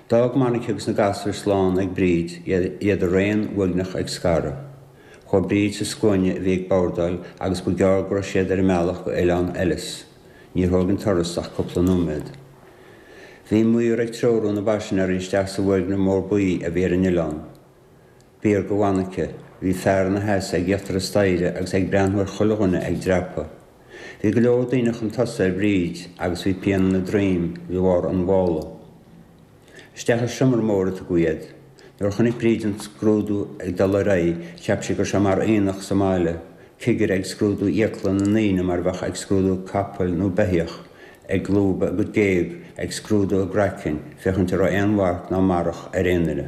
D'fhág Monica agus na gasúir slán ag Bríd, iad araon uaigneach ag scaradh. Chuaigh Bríd sa scuaine a bhí ag bordáil agus ba ghearr go raibh siad ar a mbealach go Oileán Ellis. Níor thóg an turas ach cúpla nóiméad. Bhí an maor ag treorú na bpaisinéirí isteach sa bhfoirgneamh mór buí a bhí ar an oileán. B'fhíor do Mhonica. Bhí fear ina sheasamh ag íochtar an staighre agus é ag breathnú ar chuile dhuine ag dreapadh. Bhí go leor daoine chun tosaigh ar Bhríd agus bhí pian ina droim de bharr an mhála. Isteach i seomra mór a tugadh iad. Nuair a chonaic Bríd an scrúdú ag dul ar aghaidh cheap sí gur seo mar aonach sa mbaile, cigire ag scrúdú fhiacla na ndaoine mar bheadh ag scrúdú capaill nó beithíoch, ag lúbadh a gcuid géag, ag scrúdú a gcraicinn féachaint a raibh aon mharc ná marach ar aon duine.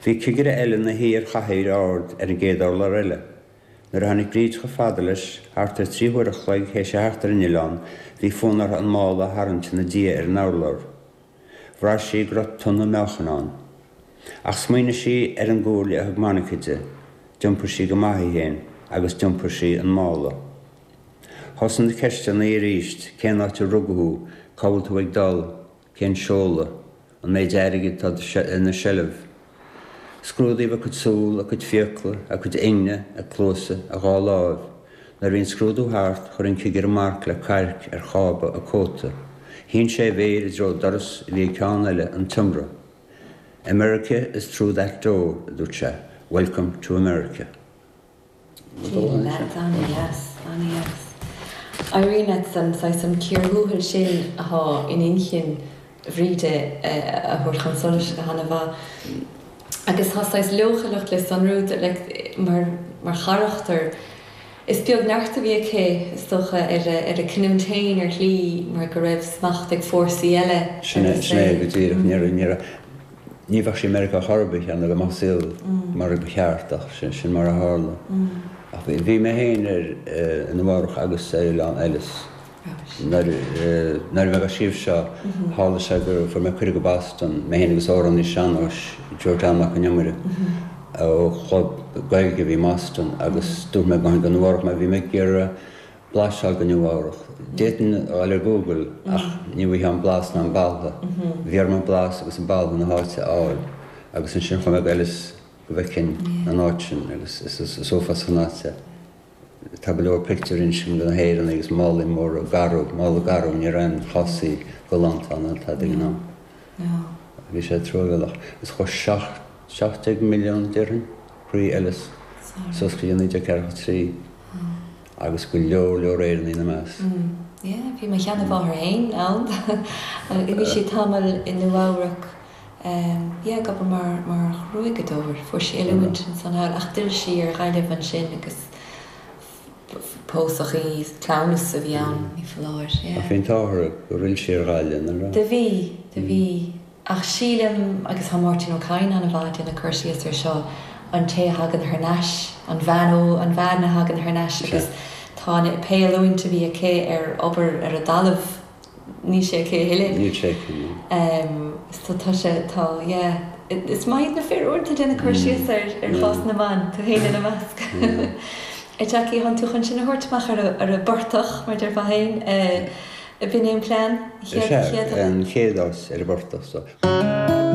Bhí cigire eile 'na shuí ar chathaoir ard ar an gcéad urlár eile. Nuair a tháinig Bríd chomh fada leis, thart ar trí huaire an chloig théis a theacht ar an Oileán, bhí fonn uirthi an mála a tharraingt ina diaidh ar an urlár. Bhraith sí go raibh tonna meáchain ann. Ach smaoinigh sí ar an gcomhairle a thug Monica di. D'iompair sí go maith í féin agus d'iompair sí an mála. Thosaigh na ceisteanna aríst, cén áit ar rugadh thú? Cá bhfuil tú ag dul? cén seoladh, an méid airgid atá ina seilbh. Scrúdaíodh a cuid súl, a cuid fiacla, a cuid ingne, a cluasa, a dhá láimh. Nuair a bhí an scrúdú thart, chuir an cigire marc le cailc ar chába a cóta. Shín sé a mhéir i dtreo doras a bhí ag ceann eile an tseomra. America is through that door, a dúirt sé, Welcome to America. Sílim leat, ana dheas, ana dheas. Éiríonn leat an saghas, an chíor thuathail sin athá in inchinn Bhríde a thabhairt chun solais go hana mhaith. Agus tá saghas leochaileacht le sonrú, like, mar, mar charachtar. Is beag neart a bhí aici, is dócha, ar a, ar a cinniúint féin, ar shlí, mar go raibh smacht ag fórsaí eile ar a saol. Sin é, sin é go díreach. Níor, níor, Ní bheadh sí i Meiriceá chor ar bith, cheana, dá mbeadh an saol mar a ba cheart, ach sin mar a tharla. Ach bhí mé féin i Nua-Eabhrac agus ar Oileán Ellis nuair a bhí mé á scríobh seo. Tharla sé gur fuair mé cuireadh go Boston, mé féin agus amhránaí sean-nóis, Joe John Mac an Iomaire, ó chlub Gaeilge a bhí i mBoston, agus dúirt mé go mbeinn i Nua-Eabhrac mar bhí mé ag iarraidh blaiseadh de Nua-Eabhrac. D'fhéadfainn é a fháil ar Google ach ní bhfuightheá an blas ná an boladh. Bhí orm an blas agus an boladh na háite a fháil agus ansin chuaigh mé go Ellis go bhfeicfinn an áit sin agus is uafásach an áit é. Tá go leor pictiúirí ansin de na hÉireannaigh agus málaí móra garbh, mála garbh, ní raibh aon chásaí galánta ann ar fad ag an am. Bhí sé truamhéalach. Is chuaigh seacht, seacht déag milliún déarfainn, thrí Ellis suas go dtí 1943. agus go leor leor Éireannaigh ina measc. Yeah, bhí mo sheanmháthair fhéin ann agus bhí sí tamall i Nua-Eabhrac, yeah, ag obair mar, mar ghruaigeadóir, fuair sí oiliúint ansan thall ach d'fhill sí ar Ghaillimh ansin agus pósadh í, cleamhnas a bhí ann ní foláir, yeah. Ach bhí an t-ádh orthu gur fhill sí ar Ghaillimh, nach raibh? Do bhí, do bhí. Ach sílim, agus tá Máirtín Ó Cadhain an-mhaith déanamh cur síos ar seo, an té a thagann thar n-ais, an bhean, ó, an bhean a thagann thar n-ais agus tá an, pé oiliúint a bhí aici ar obair ar an dtalamh, níl sé aici a thuilleadh. Níl sé aici, níl. So tá sé, tá, yeah. Is maith iad na fir uaireanta déanamh cur síos ar chás na mban, tú féin ina measc. Jackie, tánn tú chun sinn a thabhairt amach ar an bportach, mar a déarfá féin. Opinion Plan, Is é an chéad fhás ar an bportach so.